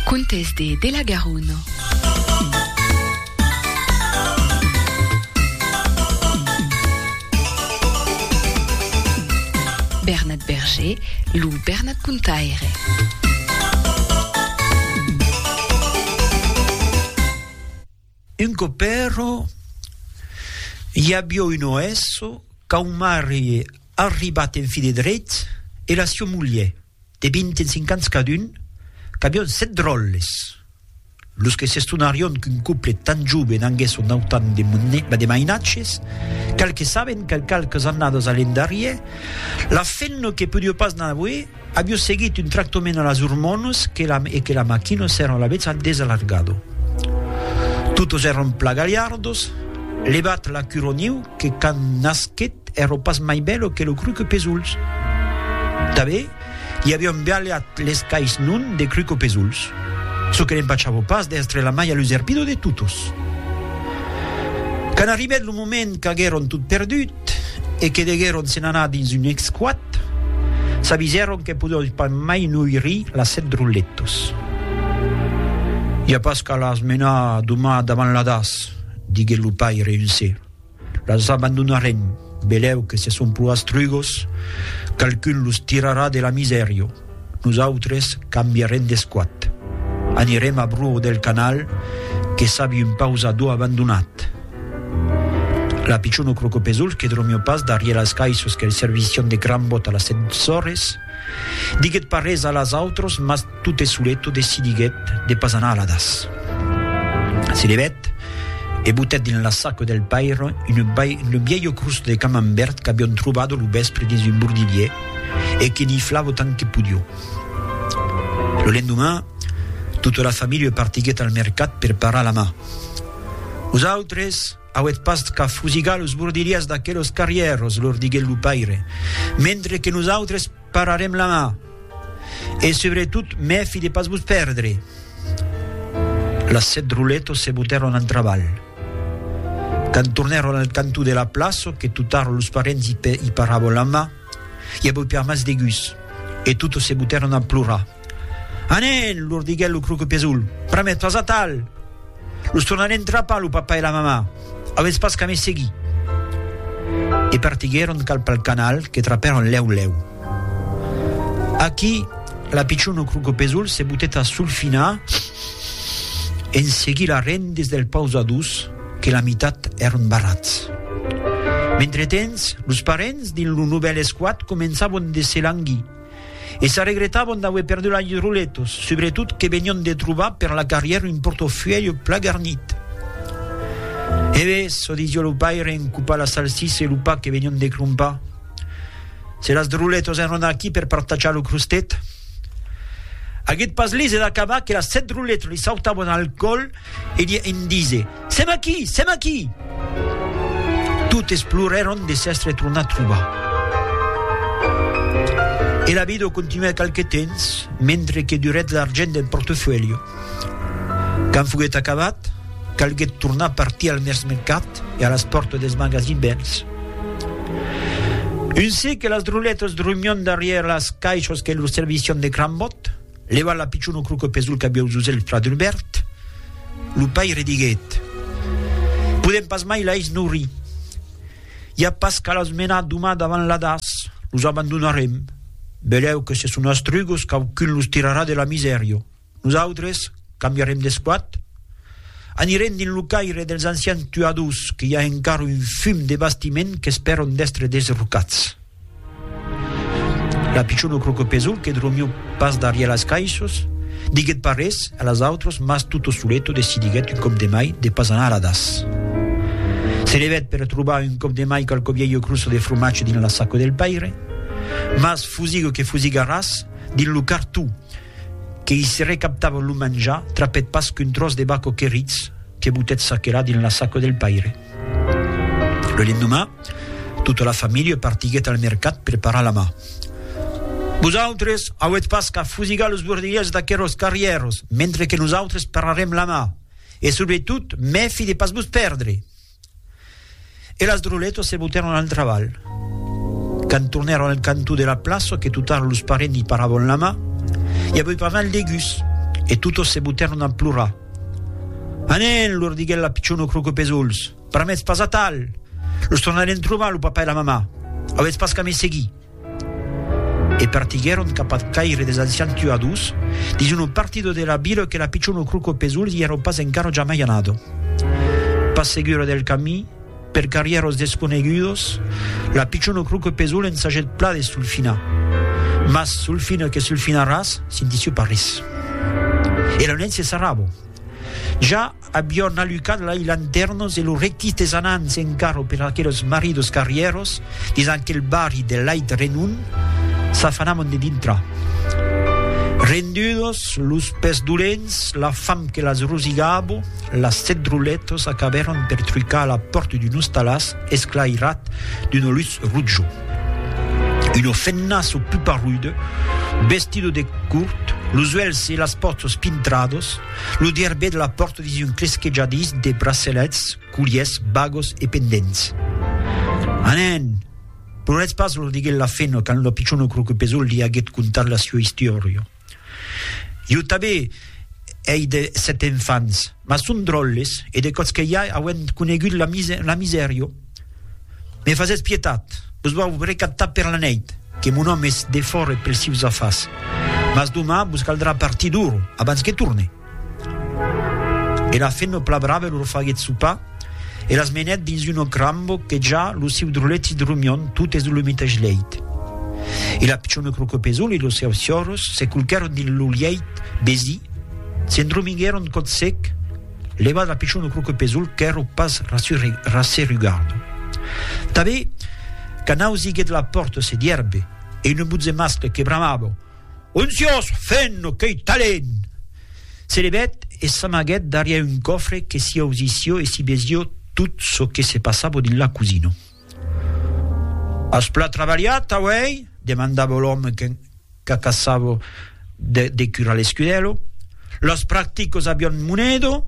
Contes de de la Garona. Bernat Berger, lo Bernat Contaire. Un copèro i avió un oèsso qu'au marri arribat en fi de drech e la sieu mulher. De 25 ans cadun, qu'avión sèt dròlles, los que s'estonarión qu'un couple tan joven anguèsse autant de mainatges, qualques sabent que qualques annadas a l'endarrier, la femna que podió pas n'aver, avió seguit un tractament a las ormonas e que la maquina s'èra alavetz desalargada. Totes èran plan galhardos, levat la cura niu, Que quand nasquet ero pas mai belo que lo cruco pesols. Tabé, li avion bialhat les cais non de cruco pesols. Ço que l'empachavo pas d'èstre la mai aluserpido de totos. Quand arribèt lo moment qu'aguèron tot perdut e que deguèron se'n anar dins un esquat, s'avisèron que podon pas mai noirir las sèt drolletos. I a pas qu'alas menar doma davant l'hadas. diguèt lo paire en se las abandonarem, velèu que se son pro astrugos, qualqu'un los tirarà de la misèria, nosautres cambiarem d'esquat, anirem a Bruo del Canal que sabi un pausador abandonat. La pichona Crocopesols que dromió pas darrier las caissos qu'el servissián de gran bòt a las 7 ores, Diguèt pas res a las autres, mas tot e solet decidiguèt de pas anar a la das. Se levèt e botèt dins la sac del paire une vielho crust de camembert qu'avion trobado lo vèspre dins un bordilhier e que niflavo tant que podió. Lo lendoman, tota la familha partiguèt al mercat per parar la mà. Los autres, Auèt pas qu'a fusigar los bordilhas d'aquelos carrièros, lor diguèt lo paire, mentre que nosautres pararem la mà. E subretot mèfi de pas vos pèrdre. Las sèt roletos se botèron en trabalh. Quand tornèron al cantó de la plaça, que totars los parents i parabon la mà, i avèu per mas de gust, e totes se botèron a plorar. Anen! lor diguèt lo Croquepesol, pr'amé tòs atal! Los tornarem trapar lo papa e la mamà, avètz pas qu'a me seguir! E partiguèron cap al canal que trapèron lèu lèu. Aquí, la pichon au Croquepesol se botèt a solfinar en seguir las rendes del pausadús que la mitat èron barrats. Mentretemps, los parents dins lo novèl esquat començavon de se languir. e s'arregretavan d'auer perdut lei roletos, subretot que venion de trobar per la carrièra un portofuèlho pla garnit. E ves, çò disió lo paire en copar la salsissa e lo pa que venion de crompar, se las roletos èran aquí per partajar lo crostet, aguèt pas lise d'acabar que las sèt roletos li sautavan al còl e li en dise, Sèm aquí! Sèm aquí! Totes plorèron de s'èstre tornat trobar. E la vida continuèt qualque temps, mentre que durèt l'argent del portefuèlho. Quand foguèt acabat, calguèt tornar partir al mercat e a las pòrtas dels magasins bèls. Un se que las droletas dromion darrièr las caishas que lor servission de crambòt, Levant la pichona croca pes dol cabiau Zuzèl fla d'un bèrt, lo paire diguèt, Podèm pas mai lais nourir. I a pas qu'a las menar doman davant l'Adas, los abandonarem. Belèu que se son astrugos quauqu'un los tirarà de la misèria. Nosautres cambiarem d'esquat? Anirem dins lo caire dels ancians tuadors que i a encara un fum de bastiment qu'espèran d'èstre desrocats. La pichon lo crocopesol que dromiu pas darrièr las caissos, diguèt pas res a las autras mas tutto suleto decidiguèt un còp de mai de pas anar a das. Se levèt per trobar un còp de mai qualque vielho crosso de fromatge dins la saco del paire, mas fusigue que fusigue a ras, dins lo cartó que i se recaptava lo manjar trapèt pas qu'un tròç de baco queritz que butèt çaquelà dins la saco del paire. Lo lendomà, tota la familha partiguèt al mercat per parar la mar. Vosautres auètz pas qu'a fusigar los bordilhèls d'aqueròs carrièros mentre que nosautres pararem la mar, e subretot mèfi de pas vos pèrdre! E las droletas se botèron al trabalh. Quand tornèron al cantó de la plaça que totara los parents i paravan la mar, i avèu pas mal de gust, e totas se botèron a plorar. Anen, lor diguèt la pichona Croquepesols, pr'amètz pas atal! Los tornarem trobar, lo papa e la mamà. Avètz pas qu'a me seguir. E partiguèron cap ath caire des ancians tuadors, dins una partida de la vila que la pichona Croquepesols i èra pas encara jamai anada. Pas segura del camí, Per carrièr os desconegudos, la pichon o croque pesol ensagèt pla de sulfinar. Mas sulfina que sulfinaràs, sintissiu pas ris. E lo net se sarrabo. Ja avion alucat lai lantèrnos e lo rectís des anants en carro per aquelos maridos carrièros dins aquel barri de lait renon, s'afanamon de dintrar. Rendudos, los pès dolents, la fam que las rosigabo, Las sèt drolletas acabèron per trucar a la pòrta d'un ostalàs esclairat d'una lutz rotja. Una fennaça puparruda, vestida de curt, los uèlhs e las pòchas pintradas, lo dièrbè de la pòrta dins un clesquejadís de bracelets, colliers, bagas e pendents. Anen! Ploretz pas, los diguèt la fena quand la pichona Croquepesòl li aguèt contat la siua istiòria. Jo tanben ei de sèt enfants, mas son dròlles e de còps que ja auem conegut la misèrio. Me fasètz pietat, vos vau recatar per la nèit, que mon òme es defòra pels sius afars, mas doman vos caldrà partir d'ora abans que torne. E la fe no plabrave lor faguet sopar e las menèt dins un òc rambo que ja lo siu droleti dromion totes de lo metesh lèit. E la pichona crocopesol e los seus ciòros se culquèron dins lo lièit besi, s'endromiguèron còth sec, levat la pichona crocopesol qu'èro pas rasserugardo. Tanben, quand ausiguet la pòrta se dierbe e una botze mascle que bramava, Un siós fent qu'ei talent! Se levèt e s'amaguèt darrièr un còfre que s'i ausissió e s'i vesió tot çò que se passava dins la cosina. As plan trabalhat auèi? demandava l'òme qu'acaçava de decurar l'escudèlo. Los practicos avián monedo?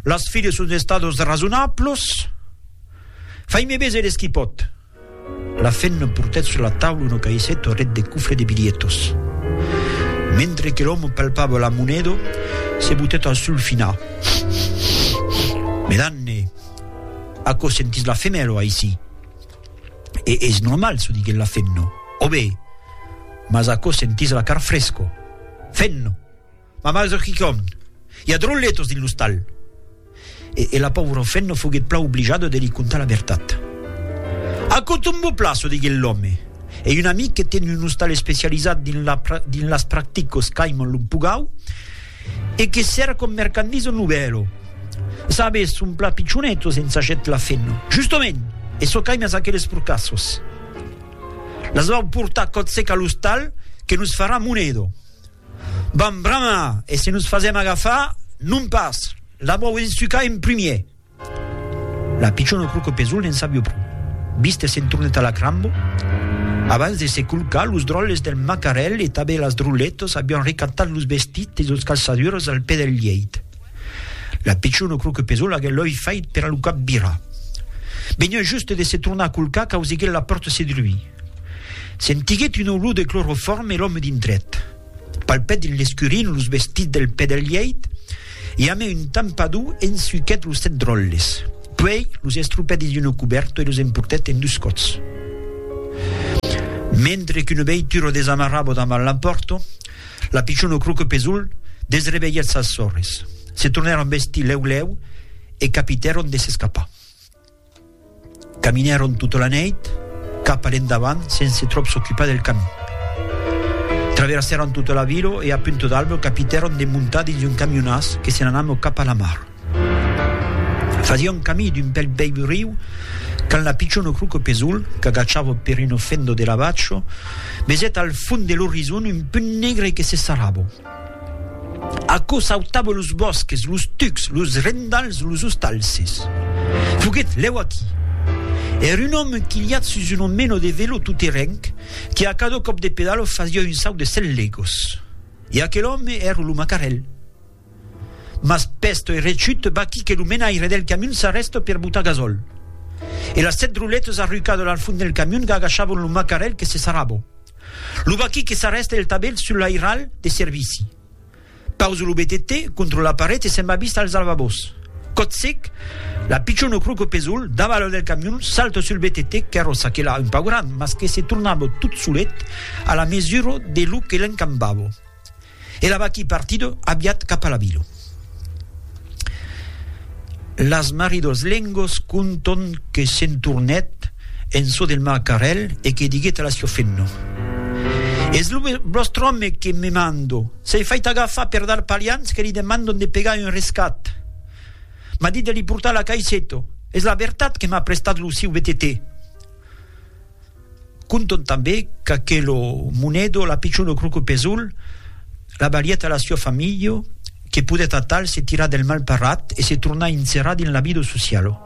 Las filles son estados rasonablos? Fai-me veser es qui pòt. La femna portèt sus la taula una caisseta auret de cofre de bilhetos. Mentre que l'òme palpava la moneda, se botèt al sul finar. Medanne, aquò sentís la femèla aicí. E es normal, çò diguèt la femna. Òbe, mas aquò sentís la car fresca. Femna! Ma mas eth quicòm. I a drolletos dins l'ostal. E la paura Fenno foguet plan oblijada de li contar la vertat. Aquò tombo plaço, diguet l'òme. Ei un amic que ten un ostal especializat dins las practicos qu'aiman lo mpugau e que serra com mercandisa un novèlo. Sabes, son plan pichonetos, ensagèt la Fenno. Justement! E çò qu'aimas aqueles porcassos. Las vau portar còth sec a l'ostal que nos farà monedo. Vam bramar, e se nos fasèm agafar, non pas! L'abò auetz sucar en primièr! La pichona Crocopesol ne'n sabió pro. Viste se'n tornèt a la crambo. Abans de se colcar, los dròlles del macarèl e tanben las dròlletas avián recatat los vestits e los calçadures al pè del lièit. La pichona Crocopesol aguèt l'òi fait per a lo cap virar. Veniá juste de se tornar a colcar qu'auseguèt la pòrta se druir. Sentiguèt una olor de clorofòrme e l'òme dintrèt. Palpèt dins l'escurin los vestits del pè del lièit e amé un tampador ensuquèt los sèt dròlles. Puèi los estropèt dins una cubèrta e los emportèt en dus còts. Mentre qu'una veitura desamarrava davant la pòrta, la pichona Croquepesol desrevelhèt sas sòrres. Se tornèron vestir lèu lèu e capitèron de s'escapar. Caminèron tota la nèit cap a l'endavant sense tròp s'ocupar del camin. Traversèron tota la vila e a Punta d'Alba capitèron de montar dins un camionàs que se n'anava cap a la mar. Fasián camí d'un bèl vèiu riu quand la pichona Croco Pesoul, qu'agachava per una fenda de la vacha, vesèt al fond de l'orizon un punt negre que se sarrava. Aquò sautava los bòsques, los tucs, los rendals, los ostalses. Foguèt lèu aquí. Èra un òme enquilhat sus un omeno de velo toterenc que a cada còp de pedalo fasiá un saut de cent legos. E aquel òme èra lo macarèl. Mas pèst e rechuut, vaquí que lo menaire del camion s'arrèsta per botar gasòl. E las sèt roletas arrucadas al fond del camion gagachavan lo macarèl que se sarrava. Lo vaquí que s'arrèsta el tabèl sul lairal de servici. Pausa lo BTT contra la paret e se'n va vist als alvabòs. Còt sec, la pichon o croco pesolh davalo del camion salta sul BTT, carròssa que la un pauc gran mas que se tornava tot solet a la mesura de lo que l'encambava. e la vaquí partido aviat cap a la vila. Las maridos lengos conton que se'n tornèt en çò del marcarèl e que diguèt a la sior Fenno, Es lo vòstre òme que me mando, s'ei fait agafar per d'arpalians que li demandon de pegar un rescat. M'a dit de li portar la caisseto, es la vertat que m'a prestat lo siu vetetè. Conton tanbé qu'aquelo monedo la pichon lo croco pesolh la balhèt a la sua familho que podèt atal se tirar del mal parrat e se tornar inserar dins la vida socialo.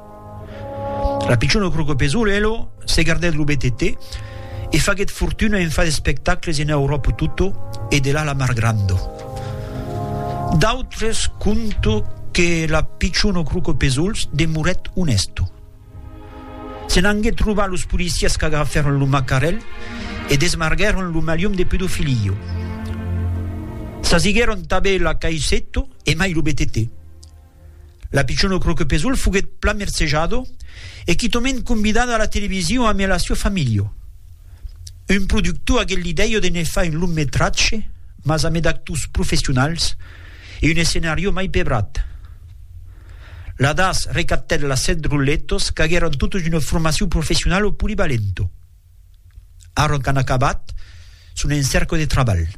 La pichon lo croco pesolh elo se gardèt lo BTT e faguèt fortuna en far d'espectacles en Euròpo toto e de là la mar grando. D'autres conto que la pichon lo croco pesolhs demorèt onèsto. Se n'anguèt trobar los policièrs qu'agrafèron lo macarèl e desmarguèron lo malium de pedofilio. Sasiguèron tabé la caisseto e mai lo BTT. La pichona Croquepesol foguèt plan mercejado e quitòment convidada a la televisio amé la sua familio. Un productor aguèt l'idèio de ne far un long metratge, mas amé d'actors professionals e un escenario mai pebrat. L'Adas recaptèt las sèt drolletos qu'aguèron totes una formacion professionala o polivalenta. Ara qu'an acabat, son en cèrca de trabalh.